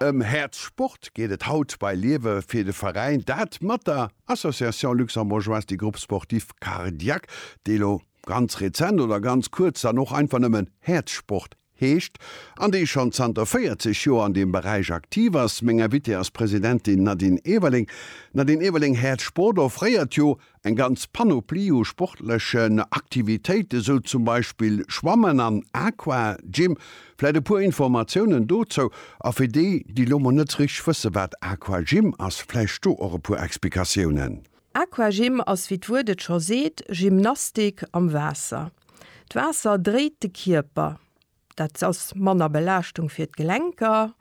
Ëm Häerz Sport geet et haut bei Liewe fir de Veräin, dat mat der Association Luxembourgeoise des Groupes Sportifs Cardiaques, déi elo ganz rezent oder ganz kuerz dann och einfach nëmmen Häerzsport heescht, an déi schonn zanter 40 Joer an deem Beräich aktiv ass. Meng Invitée ass d'Presidentin Nadine Everling. Nadine Everling, Häerzsport offréiert jo Eng ganz Panoplie u sportlechen Aktivitéiten, sou zum Beispill Schwammen an Aqua Gym. Vläit e puer Informatiounen dozou, a fir déi, déi lo mol net sou richteg wësse wat Aqua Gym ass, vläicht do och e puer Explikatiounen. Aqua Gym ass, wéi d'Wuert et scho seet, Gymnastik am Waasser. D'Waasser dréit de Kierper, dat ass manner Belaaschtung fir d'Gelenker,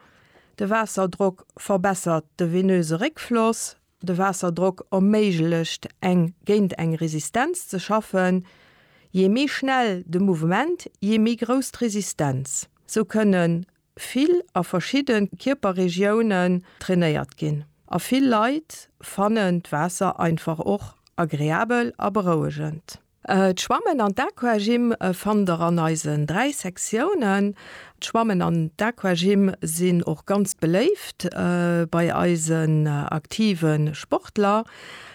de Waasserdrock verbessert de venöse Réckfloss, De Waasserdrock erméiglecht eng géint eng Resistenz ze schaffen. Jee méi schnell de Mouvement, jee méi grouss d'Resistenz. Sou kënne vill a verschidde Kierperregiounen trainéiert ginn. A vill Leit fannen d'Waasser einfach och agreabel a berouegend. D'Schwammen an d'Aquagym fannt der an eisen 3 Sektiounen. D'Schwammen an d'Aquagym sinn och ganz beléift bei eisen aktive Sportler.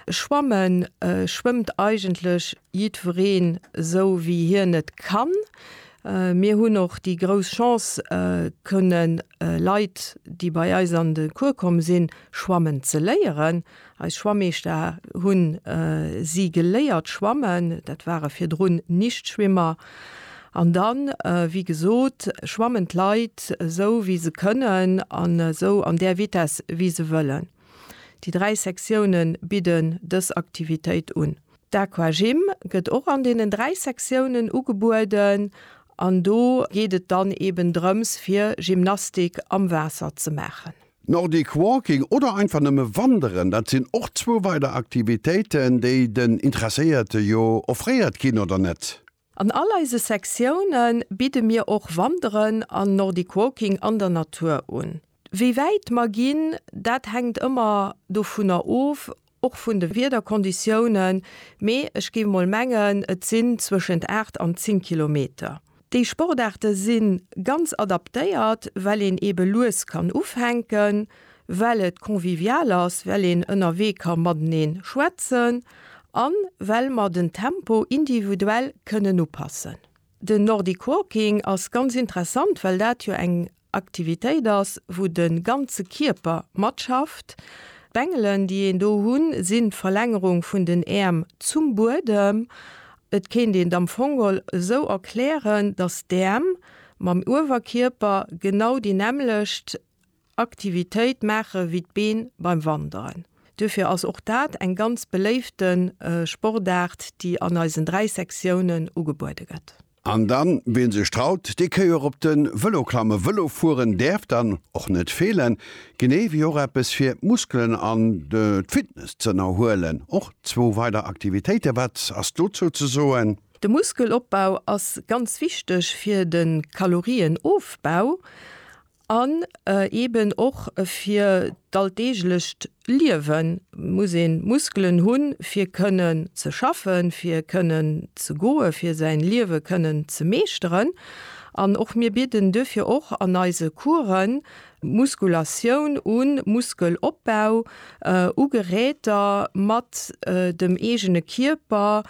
Schwamme schwëmmt eigentlech jiddwereen esou wéi hien et kann. Mir hunn och déi grouss Chance kënne Leit déi bei eis an de Cours komm sinn, schwammen ze léieren. Eis Schwammeeschter hunn si geléiert schwammen, dat ware virdrun Nichtschwimmer. An dann, wéi gesot, schwammen d'Leit esou wéi se kënnen an esou an där Vitesse wéi se wëllen. Déi dräi Sektione bidden dës Aktivitéit un. D'Aquagym gëtt och an deenen dräi Sektiounen ugebueden an do geet et dann eben drëms fir Gymnastik am Waasser ze maachen. Nordic Walking oder einfach nëmme Wanderen, dat sinn och zwou weider Aktivitéiten, déi den Interesséierte jo offréiert ginn, oder net? An all eise Sektione bidde mir och Wanderen an Nordic Walking an der Natur un. Wéi wäit mer ginn, dat hänkt ëmmer dovunner of, Och vun de Wiederkonditiounen, mee ech géif mol mengen et sinn zwëschent 8 an 10 Kilometer. Déi Sportaarte si ganz adaptéiert, well een eebe lues kann ufänken, well et convivial ass, well een ënnerwee ka mateneen schwätzen an well mer den Tempo individuell kënnen upassen. Den Nordic Walking ass ganz interessant, well dat jo eng Aktivitéit ass, wou de ganze Kierper matschafft. D'Bengelen, déi een do hunn, sinn d'Verlängerung vun den Äerm zum Buedem. Et kéint een et am Fongol esou erklären, dass d'Äerm mam Uewerkierper genau déi nämmlecht Aktivitéit maache wéi d'Been beim Wanderen. Duerfir ass och dat eng ganz beléifte Sportaart, déi an eisen dräi Sektiounen ugebuede gëtt. An dann, ween sech traut, dee kéi och op den Velo klammen. Velo fueren däerf dann och net feelen, genee wéi och eppes fir d'Muskelen an d'Fitness ze ënnerhuelen. Och zwou weider Aktivitéiten, wat ass dozou ze soen? De Muskelopbau ass ganz wichteg fir de Kalorienofbau An eeben och fir d'alldeeglecht Liewe muss ee Muskelen hunn, fir kënnen ze schaffen, fir kënnen ze goen, fir säin Liewe kënnen ze meeschteren. An och mir bidden duerfir och an eise Coursen Muskulatioun un, Muskelopbau u Geräter mat dem eegene Kierper,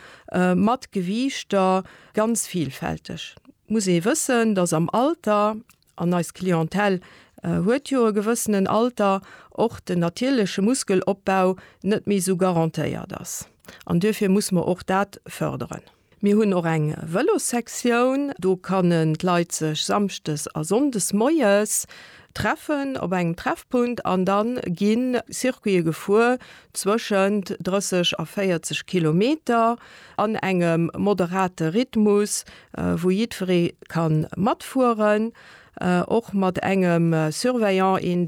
mat Gewiichter, ganz vilfälteg. Muss ee wëssen, dass am Alter. An eis Clientèle huet jo e gewëssenen Alter, och den natierleche Muskelopbau net méi esou garantéiert ass. An duerfir muss mer och dat förderen. Mir hunn och eng Vëlossektioun. Do kannen d'Leit sech samschdes a sonndes moies treffen op engem Treffpunkt an da gi Circuite gefuer zwëschent 30 a 40 Kilometer an engem moderate Rhythmus, wou jiddweree ka matfueren, och mat engem Surveillant, een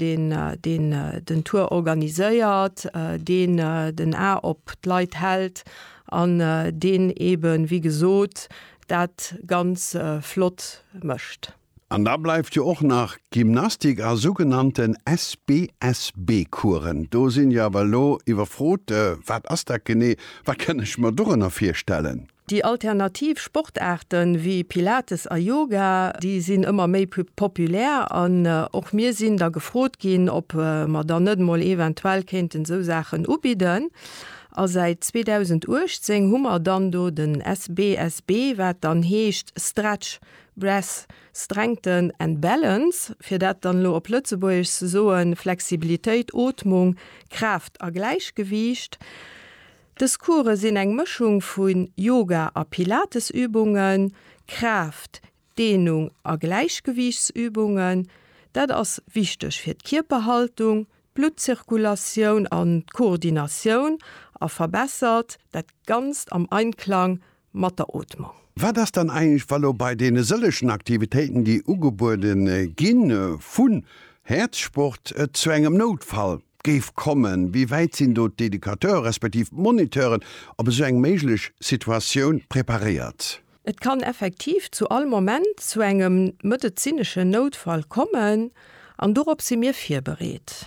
deen den Tour organiséiert, deen den A op d'Leit hält an deen eebe wéi gesot dat ganz flott mécht. An da bleift jo och nach Gymnastik a sougenannten SBSB-Coursen. Do sinn jo awer elo iwwerfrot, wat ass dat genee? Wat kann ech mer dorënner virstellen? Déi alternativ Sportaarte wéi Pilates a Yoga, déi sinn ëmmer méi populär an och mir sinn da gefrot ginn, ob mer dann net emol eventuell kéinten esou Saachen ubidden. A säit 2018 hu mer dann do den SBSB, wat dann heescht Stretch, Breath, Strengthen and Balance, fir dat dann elo op Lëtzebuergesch ze soen, Flexibilitéit, Ootmung, Kraaft a Gläichgewiicht. Dës Course sinn eng Mëschung vu Yoga a Pilatesübungen, Kraaft-, Dehnung a Gläichgewiichtsübungen. Dat ass wichteg fir d'Kierperhaltung, d'Bluttzirkulatioun an d'Koordinatioun a verbessert dat Ganzt am Einklang mat der Ootmung. Wat ass dann eigentlech, wa lo bei deene sëllechen Aktivitéiten, déi ugebuede gi vu Häerzsport, et zu engem Noutfall géif kommen? Wéi wäit sinn do d'Educateure respektiv d'Moniteuren op esou eng méiglech Situatioun preparéiert? Et kann effektiv zu all Moment zu engem medezineschen Noutfall kommen an dorop si mir virbereet.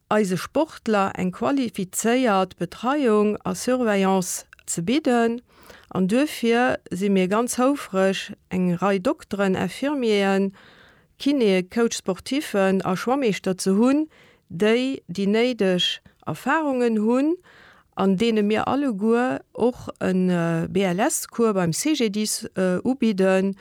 eise Sportler eng qualifizéiert Betreiung a Surveillance ze bidden an duerfir si mir ganz houfreg eng Rei Dokteren, Infirmieren, Kinéë, Coach sportiffen a Schwammeeschter ze hunn, déi déi néideg Erfarungen hunn an deene mir alleguer och e BLS-Cours beim CGDIS ubidden,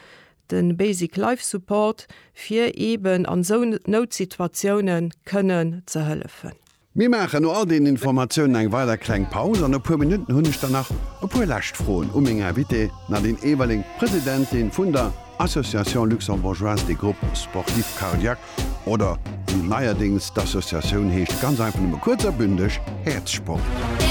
de Basic Life Support, fir eeben an esou Noutsituatiounen kënnen ze hëllefen. Mir maachen no all deenen Informatiounen eng weider kleng Paus an e puer Minutten hunn ech dann nach e puer lescht Froen u meng Invitée Nadine Everling, Presidentin vun der Association Luxembourgeoise des Groupes Sportifs Cardiaques oder wéi neierdéngs d'Associatioun heescht, ganz einfach nëmme kuerz a bündeg, Häerzsport.